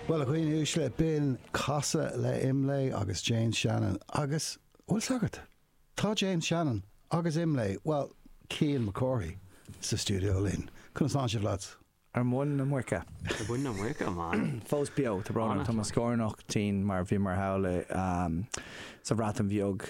Bhuel, a dhaoine uaisle, b'in Casadh le Imlé agus James Shannon agus, bhfuil 'fhios agat, tá James Shannon agus Imlé, bhuel, Cian Mac Cárthaigh, sa stiúideo linn. Conas tá sibh, lads? Ar mhuin na muice. Ar mhuin na muice, a man. Fós beo, tá brón orm, tá mo scórnach tinn mar bhíomar thall sa Bhreatain Bheag.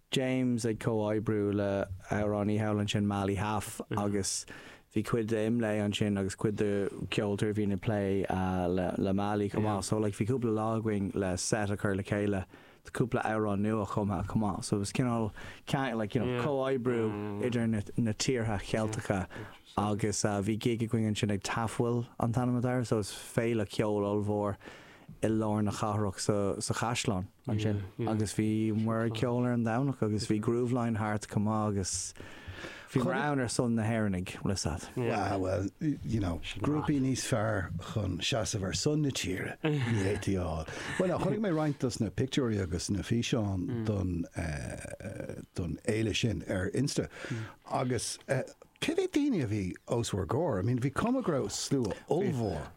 James ag comhoibriú le hamhránaí thall ansin Mali Haf agus bhí cuid de Imlé ansin agus cuid de ceoltóirí a bhíonn ag plé le Mali chomh maith so like bhí cúpla lá againn le set a chur le chéile do cúpla amhrán nuachumtha chomh maith so it was cineál ceann like you know comhoibriú idir na na tíortha Cheilteacha agus bhí gig againn ansin ag Tafwyl an t-ainm atá air so is féile ceoil ollmhór i lár na cathrach sa sa chaisleán. ansin agus bhí muid ag ceol ar an Domhnach agus bhí Grooveline thart chomh maith agus bhí muid ann ar son na hÉireannaigh, bhfuil 'fhios a'd. Wow, well, you know, grúpaí níos fearr chun seasamh ar son na tíre ní fhéadfaí a fháil. Bhuel, ná, chonaic mé roinnt dos na pictiúirí agus na físeáin don, eh, don fhéile sin ar Insta agus, eh, cé mhéad daoine a bhí os bhur gcomhair? I mean, bhí cuma go raibh slua ollmhór.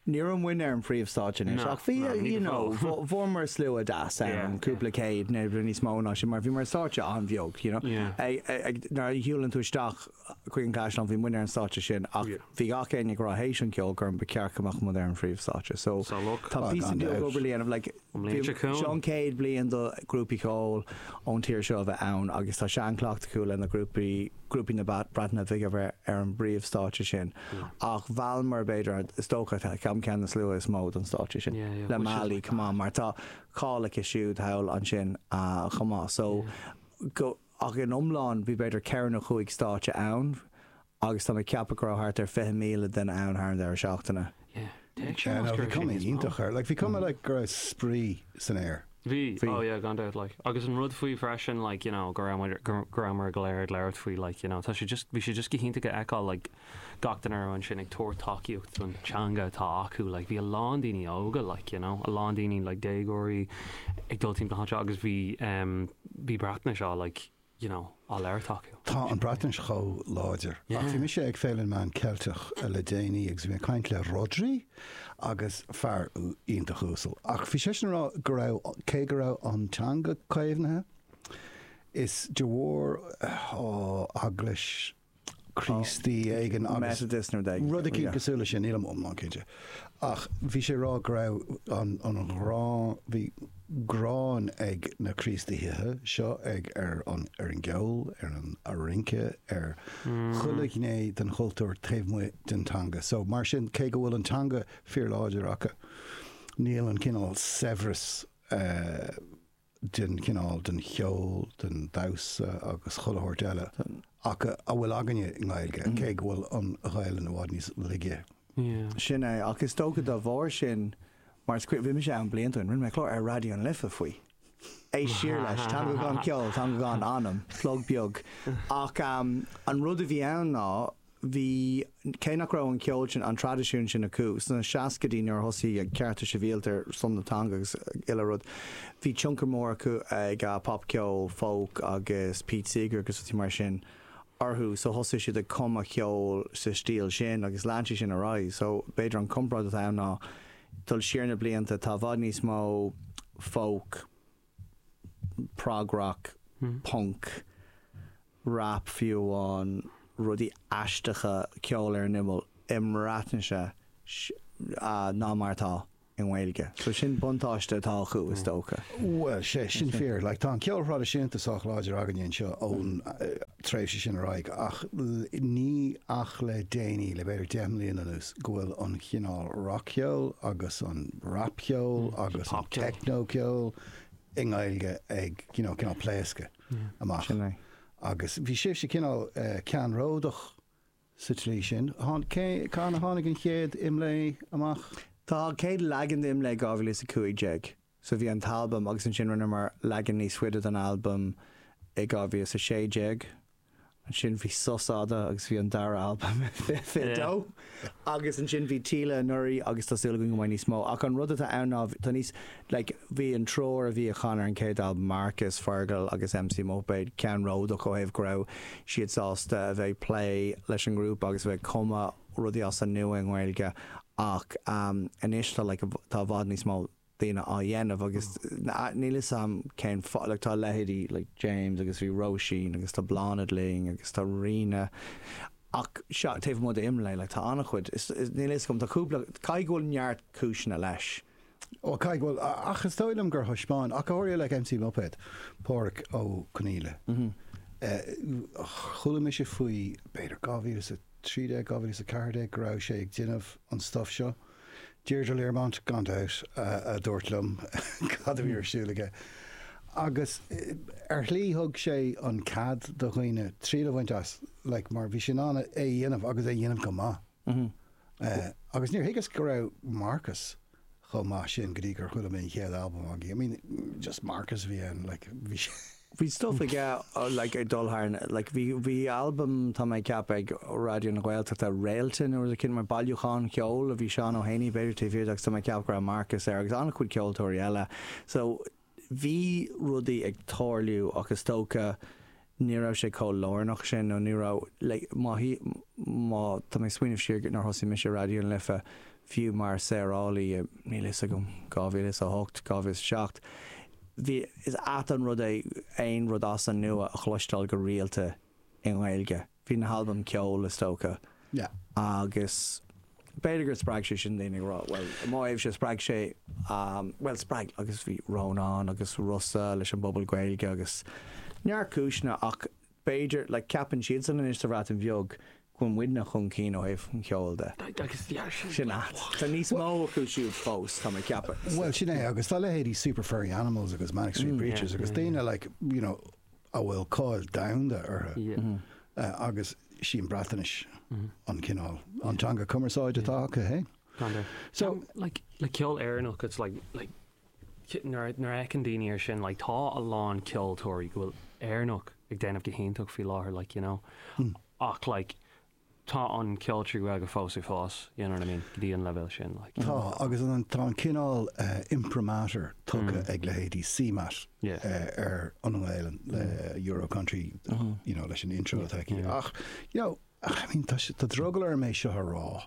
Ní raibh muidne ar an phríomhstáitse anois ach bhí, you know, fuaireamar slua deas ann, cúpla céad nó níos mó ná sin mar bhíomar ar stáitse an-bheag, you know. Nuair a shiúlann tú isteach chuig an gCaisleán bhí muidne ar an stáitse sin ach bhí gach éinne ag rá théis an cheolchoirm ba cheart go mbeadh muid ar an phríomhstáitse so tá píosa beag obair le déanamh like, An mbliain seo Seo chugainn. an chéad bhliain do ghrúpaí ceoil ón tír seo a bheith ann agus tá seanchleacht acu le na grúpaí, grúpaí na Breataine Bhige a bheith ar an bpríomh stáitse sin ach mheallamar b'fhéidir, is dócha tá ceann ceann na sluaite is mó don stáitse sin Yeah, yeah, le which is Mali like chomh maith mar tá cáil aici siúd thall ansin chomh maith so Yeah. go ach in iomlán bhí b'fhéidir ceithre nó chúig stáitse ann Agus tá mé ag ceapadh go raibh thart ar 20,000 duine ann thar an deireadh seachtaine. Yeah, téigh sé Yeah, no, bhí cuma iontach ar, like, bhí cuma like go raibh spraoi san aer. Bhí, Bhí. oh yeah, gan dabht, like. Agus an rud faoi freisin, like, you know, go raibh muid, go, go raibh muid go léir ag labhairt faoi, like, you know, tá sé just, bhí sé just go hiontach a fheiceáil, like, gach duine a raibh ansin ag tabhairt tacaíocht don teanga atá acu, like, bhí a lán daoine óga, like, you know, a lán daoine, like, déagóirí ag dul timpeall na háite agus bhí, um, bhí Breatnais á, like, you know, á labhairt acu. Tá an Bhreatnais chomh láidir. Ach bhí mise ag Féile na Meán Ceilteach le déanaí agus bhí mé ag caint le Rhodri agus fear iontach uasal ach bhí seisean ag rá go raibh, cé go raibh an teanga caomhnaithe, is de bharr, oh, Eaglais, Críostaí éigin agus rud eicínt cosúil leis sin, nílim iomlán cinnte. Ach bhí sé ag rá go raibh an ghráin, bhí gráin ag na Críostaithe seo ar an gceol, ar an rince, ar chuile ghné den chultúr taobh amuigh den teanga. So mar sin, cé go bhfuil an teanga fíorláidir acu, níl an cineál saibhreas, den chineál, den cheol, den damhsa agus chuile shórt eile atá againne i nGaeilge, cé go bhfuil an Ghaelainn i bhfad níos laige. Sin é, ach is dócha dá bharr sin, mar is cuimhin, bhí mise ann blianta ó shin, rinne mé clár ar Raidió na Life faoi. Éist siar leis, teanga gan cheol, teanga gan anam, plug beag. Ach an rud a bhí ann ná, bhí, cé nach raibh an ceol sin, an traidisiún sin acu sna seascaidí nuair a thosaigh cearta sibhialta ar son na teanga agus uile rud. Bhí tionchar mór ag popcheol, folk agus Pete Seeger agus rudaí mar sin orthu so thosaigh siad ag cumadh ceoil sa stíl sin agus lean sé sin ar aghaidh. So b'fhéidir an comparáid atá ann ná dul siar na blianta, tá i bhfad níos mó folk, prog-rock, punk, rap fiú amháin, rudaí aisteacha, ceol ar an imeall i mBreatnais ná mar atá i nGaeilge. So sin buntáiste atá acu is dócha. Bhuel, tá sé sin fíor. Like tá an ceol thraidisiúnta sách láidir againne anseo ón, tréimhse sin ar aghaidh, ach níl ach le déanaí, le b'fhéidir deich mbliana anuas, go bhfuil an chineál rac-cheoil agus an rapcheol agus an teicneocheol i nGaeilge ag cineál pléascadh amach agus bhí sibhse cineál ceannródach sa tslí sin. Cathain a tháinig an chéad Imlé amach? Tá an chéad leagan d'Imlé 2015 so bhí an t-albam agus ansin rinneamar leagan níos faide den albam i 2016. Ansin bhí sos fhada agus bhí an dara albam i 2022 agus ansin bhí Tíle anuraidh agus tá súil againn go mbeidh níos mó ach an rud atá ann ná tá níos like bhí an triúr a bhí ag canadh ar an chéad albam Marcus, Fergal agus MC Muipéad ceannródach ó thaobh go raibh siad sásta a bheith ag plé leis an ngrúpa agus a bheith ag cumadh rudaí as an nua i nGaeilge ach anois tá like tá i bhfad níos mó daoine á dhéanamh agus níl 'fhios a'm cén fáth like tá leithéidí like James agus Róisín agus tá Bláthnaid linn agus tá Ríona ach sea taobh amuigh d'IMLÉ like tá an-chuid is níl 'fhios a'm tá cúpla caithfidh go bhfuil neart cúiseanna leis. Ó caithfidh go bhfuil ach is dóigh liom gur thaispeáin ach go háirithe like MC Muipéad, Pádhraic Ó Conaíle, chuala mise faoi b'fhéidir 2013, 2014 go raibh sé ag déanamh an stuff seo. Deirdre Learmont, gan dabht, a dúirt liom cad a bhí ar siúl aige. Agus ar shlí thug sé an cead do dhaoine triail a bhaint as like mar bhí sé in ann é a dhéanamh agus é a dhéanamh go maith. Agus níor thuigeas go raibh Marcus chomh maith sin go dtí gur chuala mé an chéad albam aige. I mean just Marcus a bhí ann like bhí sé Bhí stuff ag like ag dul thar na like bhí bhí albam tá mé ag ceapadh ag Raidió na Gaeltachta Réalta nó rud éicint mar bailiúchán ceoil a bhí Seán Ó hÉanaí b'fhéidir taobh thiar de agus tá mé ag ceapadh go raibh Marcus air agus an-chuid ceoltóirí eile so bhí rudaí ag tarlú ach is dócha ní raibh sé chomh lárnach sin nó ní raibh like má shuigh má tá mé ag smaoineamh siar nuair a thosaigh mise Raidió na Life Fiú mar saorálaí i, níl a fhios agam, 2008, 2007, bhí, is annamh an rud é aon rud as an nua a chloisteáil go rialta i nGaeilge. Bhí na halbaim ceoil, is dócha. Yeah. Agus b'fhéidir gur spreag sé sin daoine ag rá, bhuel, i mo thaobhse, spreag sé, bhuel, spreag, agus bhí Rónán agus Rossa leis an bpobal Gaeilge agus neart cúiseanna ach b'fhéidir, ceapann siadsan anois sa Bhreatain Bheag go bhfuil muidne chun cinn ó thaobh an cheoil de. Sin a. Tá níos mó acu siúd fós, tá mé ag ceapadh. Bhuel, sin é agus tá leithéidí Super Furry Animals agus Manic Street Preachers agus daoine like, you know, a bhfuil cáil domhanda orthu agus sí an Bhreatnais an cineál an teanga cumarsáide atá acu, hey? So, like, le ceol Éireannach, it's like, like, nuair a fheiceann daoine ar sin like tá a lán ceoltóirí ceoil Éireannach ag déanamh go hiontach faoi láthair like you know ach like tá an ceol trí Ghaeilge fós ag fás you know what I mean go dtí an leibhéal sin like. Tá agus tá an cineál imprimatur tugtha ag leithéidí CMAT ar an nGaelainn le Euro Country you know leis an intro atá aici ach you know Ach I mean, tá sé, tá drogall orm é seo a rá,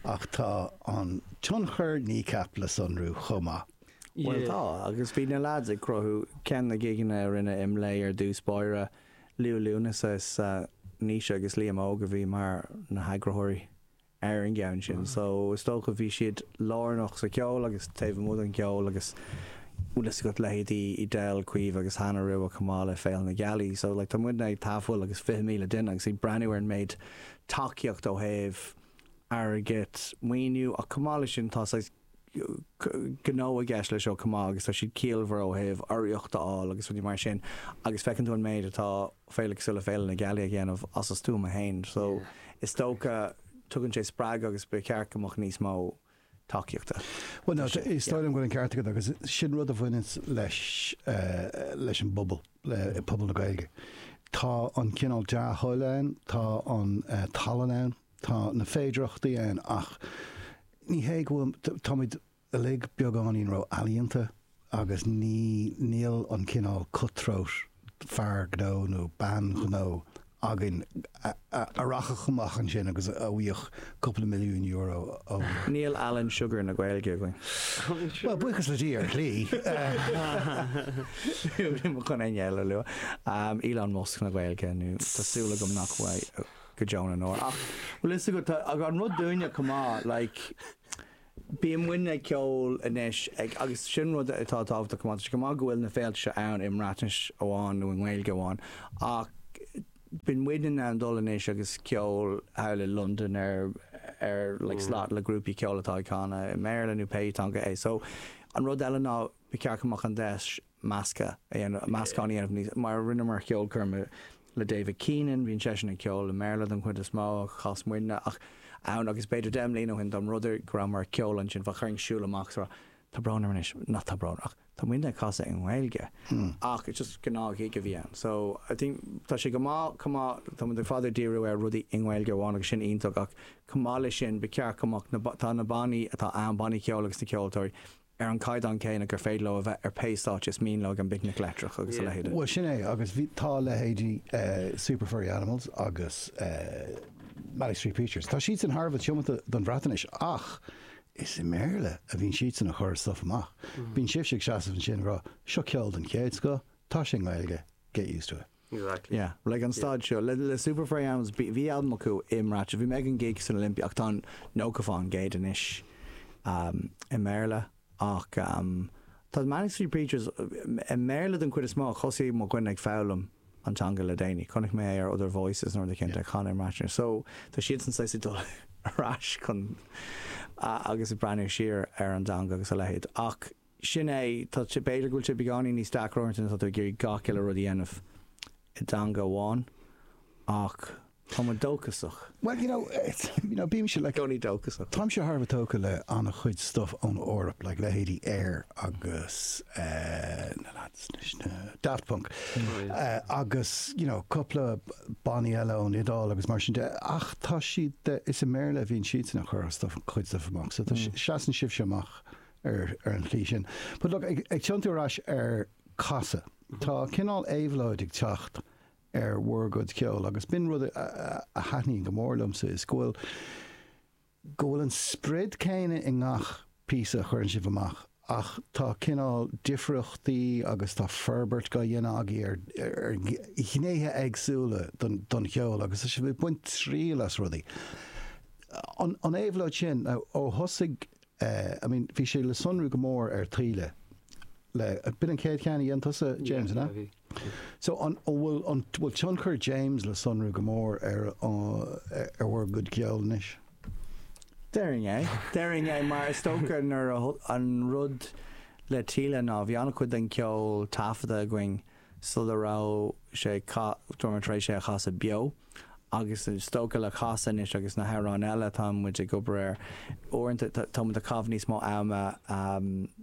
ach tá an tionchar Kneecap le sonrú chomh maith. Bhuel tá, agus bhí na lads ag cruthú, ceann na gigeanna a rinne Imlé ar dtús báire, Liú Lúnasa is Naoise agus Liam Óg a bhí mar na heagraitheoirí ar an gceann sin, so is dócha bhí siad lárnach sa cheol agus taobh amuigh den cheol agus bhfuil fhios agat leithéidí Edel, Caoimhe agus Hannah Rua chomh maith le Féile na Gealaí so like tá muidne ag Tafwyl agus 20,000 duine agus ag breathnú ar an méid tacaíocht ó thaobh airgid, maoiniú ach chomh maith leis sin tá saghas gnó i gceist leis seo chomh maith agus tá siad ciallmhar ó thaobh urraíocht a fháil agus rudaí mar sin agus feiceann tú an méid atá Féile cosúil le Féile na Gealaí a dhéanamh as a stuama fhéin so is dócha tugann sé spreagadh agus ba cheart go mbeadh níos mó tacaíochta. Bhuel no, is dóigh liom go bhfuil an ceart agat agus sin rud a bhaineanns leis an bpobal, le pobal na Gaeilge. Tá an cineál dea-thoil ann, tá an tallann ann, tá na féidearthachtaí ann ach ní hé go bhfuil, táimid uilig beagáinín ró-ealaíonta. agus ní níl an cineál cut-throat fear gnó nó bean ghnó againn a rachadh amach ansin agus a bhfaigheadh cúpla milliún euro ó. Níl Alan Sugar na Gaeilge againn. Bhuel, buíochas le Dia, ar shlí. Nílim chun éinne eile a lua. Elon Musk na Gaeilge nó tá súil agam nach bhfuil go deo na ndeor. Ach bhfuil fhios agat, tá an rud dúinne chomh maith, like, Bíonn muidne ag ceol anois ag agus sin rud atá tábhachtach chomh maith. Tá sé go maith go bhfuil na féilte seo ann i mBreatnais amháin nó i nGaeilge amháin ach bíonn muidne in ann dul anois agus ceol thall i Londain ar ar like slot le grúpaí ceoil atá ag canadh i mBéarla nó pé teanga é. So an rud eile ná ba cheart go mbeadh an deis measctha a dhéanamh, meascán a dhéanamh níos, mar a rinneamar ceolchoirm le David Keenan, bíonn seisean ag ceol i mBéarla don chuid is mó, chas muidne ach ann agus b'fhéidir deich mbliana ó shin dom rud go rabhamar ag ceol ansin fá chuireann siúl amach so tá brón orm anois, nach tá brón ach tá muidne ag casadh i nGaeilge ach just gnáth-ghig a bhí ann so I think tá sé go maith chomh maith tá muid i bhfad ag díriú ar rudaí i nGaeilge amháin agus sin iontach ach chomh maith leis sin ba cheart chomh maith tá na bannaí atá ann, bannaí ceoil agus na ceoltóirí, ar an gcaighdeán céanna gur féidir leo a bheith ar pé stáitse is mian leo ag an bPicnic Leictreach agus a leithéid. Bhuel, sin é agus bhí, tá leithéidí Super Furry Animals agus Manic Street Preachers, tá siadsan thar a bheith tiomanta don Bhreatainis ach is i mBéarla a bhíonn siadsan ag cur stuif amach. Bíonn sibhse ag seasamh ansin ag rá, seo ceol den chéad scoth, tá sé i nGaeilge, get used to it. Exactly. Yeah, like an staid seo le le Super Furry Animals bhí bhí albam acu i mBreatnais bhí mé ag an gig san Olympia ach tá an ócáid dá gcuid anois um i mBéarla ach um tá Manic Street Preachers i mBéarla den chuid is mó ach thosaigh mo dhuine ag foghlaim an teanga le déanaí chonaic mé é ar Other Voices nó rud éicint ag canadh i mBreatnais so tá siadsan saghas ag dul ar ais chun agus ag breathnú siar ar an teanga agus a leithéid ach sin é, tá, b'fhéidir go bhfuil sé beagáinín níos deacra uaireanta nuair atá tú ag iarraidh gach uile rud a dhéanamh i dteanga amháin ach tá muid dóchasach. Bhuel, you know, you know, bímse, like, i gcónaí dóchasach. Táimse thar a bheith tógtha le an-chuid stuff ón Eoraip, like, leithéidí Air agus eh na lads leis na, Daft Punk, eh agus, you know, cúpla bannaí eile ón Iodáil agus mar sin de ach tá siad de, is i mBéarla a bhíonn siadsan ag cur a stuff, cuid stuff amach so tá, seasann sibhse amach ar an tslí sin. But look, ag ag tiontú ar ais ar casadh, tá cineál éabhlóid ag teacht ar bhur gcuid ceoil agus b'in rud a a thaitníonn go mór liomsa is go bhfuil go bhfuil an sprid céanna i ngach píosa a chuireann sibh amach ach tá cineál difríochtaí agus tá forbairt dhá dhéanamh agaibh ar ar ghnéithe éagsúla don don cheol agus tá sibh ag baint triail as rudaí. An an éabhlóid sin, now, ó thosaigh I mean, bhí sé le sonrú go mór ar taoille le, b'in an chéad cheann a dhein tusa, James, an ea? Yeah, yeah, bhí. So, an bhfuil, an bhfuil tionchar James le sonrú go mór ar, ar bhur gcuid ceoil anois? Déarfainn é, déarfainn é, mar is dócha nuair a, an rud le taoille ná bhí an-chuid den cheol taifeadta againn sula raibh sé ag casadh, go raibh muid tar éis é a chasadh beo, agus is dócha le casadh anois agus na hamhráin eile atá muid ag obair air, uaireanta tá muid ag caitheamh níos mó ama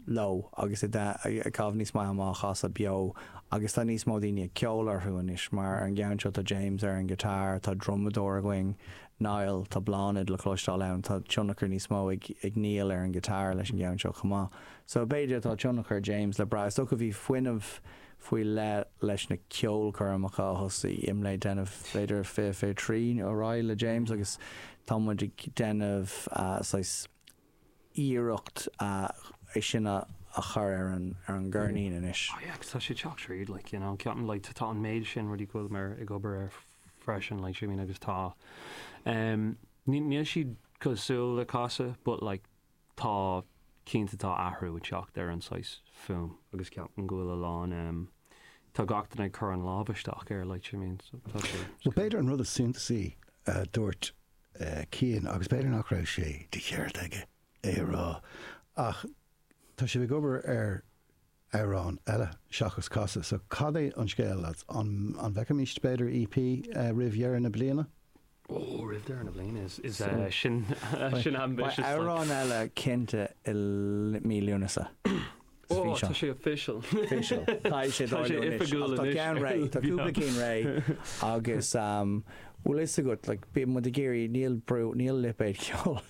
leo agus ag caitheamh níos mó ama á chasadh beo agus tá níos mó daoine ag ceol orthu anois mar ar an gceann seo tá James ar an ghiotár, tá drumadóir againn, Niall, tá Bláthnaid le cloisteáil ann, tá tionchar níos mó ag Niall ar an ghiotár leis an gceann seo chomh maith. Sa mhéid atá tionchar James le brath, is dócha, bhí fuinneamh faoi leith leis na ceolchoirmeacha a thosaigh IMLÉ ag déanamh, b'fhéidir fiche fiche trí nó ar aghaidh le James agus tá muid ag déanamh saghas iarracht é sin a chur ar an gceirnín anois. Oh yeah agus tá sé ag teacht tríd like you know ceapaim like tá an méid sin rudaí go bhfuil mé ag obair ar freisin like you know what I mean agus tá um, níl siad cosúil le casadh but like tá cinnte tá athrú ag teacht ar an saghas fuaim. agus ceapaim go bhfuil a lán em tá gach duine ag cur an lámh isteach air like you mean so tá sé Bhuel, b'fhéidir an rud is suntasaí a dúirt eh Cian agus b'fhéidir nach raibh sé de cheart aige é a rá ach tá sibh ag obair ar amhrán eile seachas casadh. So cad é an scéal lads? An an bhfeicfimis b'fhéidir EP roimh dheireadh na bliana? Ó roimh deireadh na bliana is is eh sin sin ambitious like. Amhrán eile cinnte i mí Lúnasa is Ó físeán. tá sé official. Official. Tá sé Tá sé oifigiúil anois. Tá ceann réidh. Tá cúpla cinn réidh agus bhfuil fhios agat like bíonn muid ag iarraidh níl brú níl lipéad ceoil.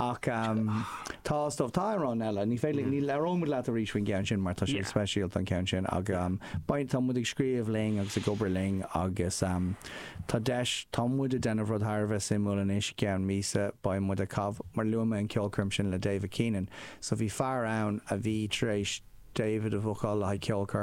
Ach tá, is dóigh, tá amhráin eile, ní féidir, ní, labhróidh muid leat arís faoin gceann sin mar tá sé speisialta an ceann sin ach beidh, tá muid ag scríobh linn agus ag obair linn agus tá deis, tá muid ag déanamh rud thar a bheith suimiúil anois, i gceann míosa beidh muid ag caitheamh, mar luaigh mé an cheolchoirm sin le David Keenan so bhí fear ann a bhí tar éis David a bhookáil le haghaidh ceolchoirm,